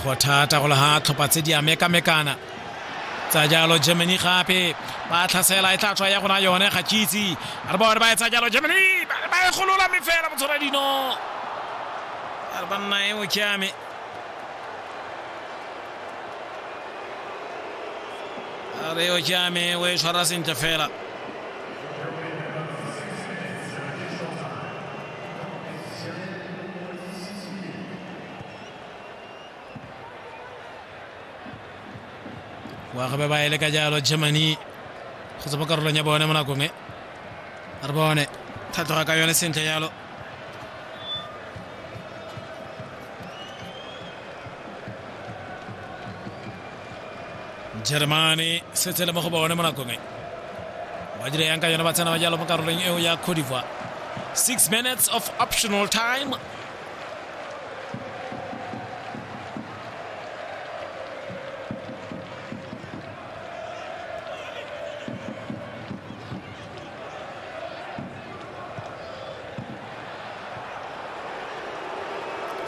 go thata go le ga tlhopha tse di a mekamekana tsa jalo germany gape ba tlhasela e tla tswa ya gona yone ga kitse a re bone ba etsa jalo germany ba e golola me fela motshwara dino a re banna e mokiame a re o kiame o e tshwara sentle fela wa gabe ba ele ka jalo germany go tsebo karolong ya bone mo nakong e re bone thatloga ka yone sentle jalo germany setse le mo go bone mo nakong e ba dire yang ka yone ba tsena ba jalo mo karolong eo ya codivoire six minutes of optional time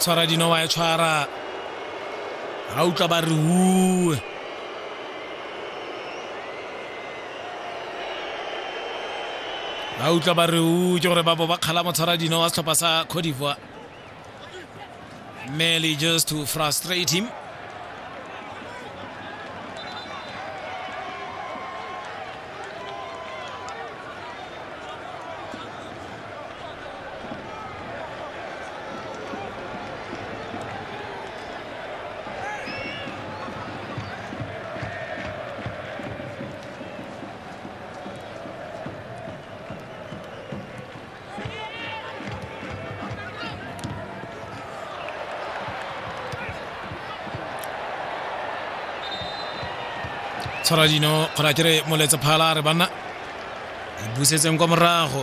tshwara dino wa e tshwara ga utlwa ba re ue ba utlwa ba re u ke gore ba bo ba kgala motshwara dino wa setlhopha sa cote d'ivoire merely just to frustrate him tshwara dino kgona kere moletsa phala a re banna e busetseng kwa morago